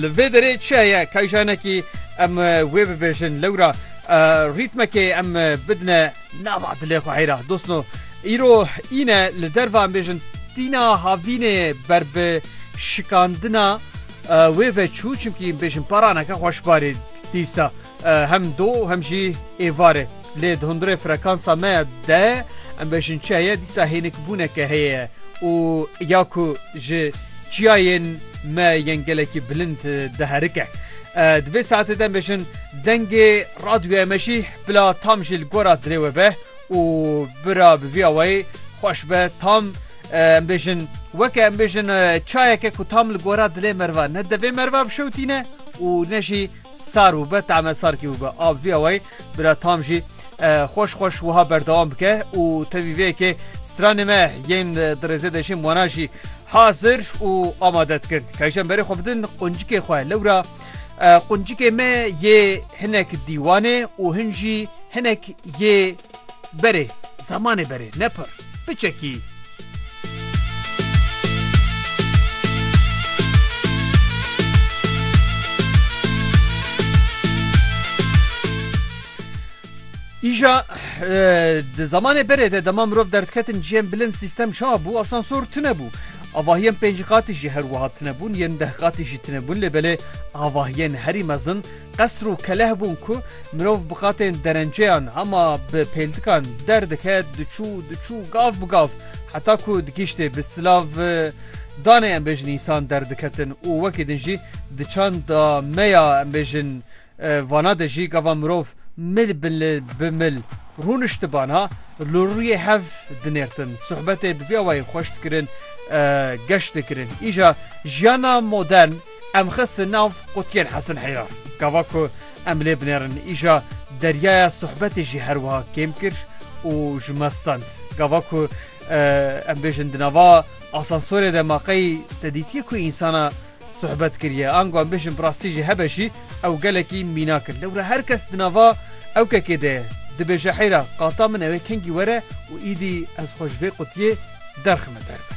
Li vê derê çi heye kayjanekî em wê bibêjin lewra rîtmekê em bidine nava dilê xwe heyra dostno îro îne li derva em bêjin tîna havînê ber bi şikandina wê veçû çimkî bêjin paraneke xweşbarî dîsa. Hem do û hem jî êvar e. Lê di hundirê frekansa me de em bêjin çi heye dîsa hênikbûneke heye ye û ya ku ji çiyayên me yên gelekî bilind diherike. Di vê saetê de em bêjin dengê radyoya me jî bila tam jî li gora dilê we be û bira bi vî awayî xweş be tam em bêjin weke em bêjin çayeke ku tam li gora dilê meriva ne devê meriva bişewtîne û ne jî Sar û be tame sar kî û be a vîya wayî bira tam jî xweş xweş wiha berdewam bike û tevî vê yekê stranê me yên di rêzê de jî wana jî hazir û amade dikin ke ji emberê xwe bidin quncikê xwe lewra quncikê me yê hinek dîwanê û hin jî hinek yê Berê, zemanê berê, ne pir. Biçekî. Îja di zemanê berê de dema mirov derdiketin ciyên bilind sîstem çawa bû asansor tune bû. Avahiyên pêncî qatî jî her wiha tune bûn yên deh qatî jî tune bûn lê belê avahiyên herî mezin Qesr û keleh bûn ku mirov bi qatên derenceyan hema bi pêldikan derdike diçû diçû gav bi gav heta ku digihîştê bi silav danê em bêjin însan derdiketin û wekî din jî di çanda me ya em bêjin vana de jî gava mirov mil bi mil rûnişti bana li rûyê hev dinêrtin suhbetê bi vî awayî xweş dikirin geş dikirin îja jiyana modern Em xistin nav qutiyên Hesin Heyra. Gava ku em lê binêrin îja deryaya sohbetê jî her wiha kêm kir û ji me stend. Gava ku em bêjin di nava asansorê de ma qey te dîtiye ku însana sohbet kiriye. Ango em bêjin bi rastî jî hebe jî ew gelekî mînak in. Lewra her kes di nava ew kekê de ye. Dibêje heyra qata min ew ê kengî were û îdî ez xwe ji vê qutiyê derxime derve.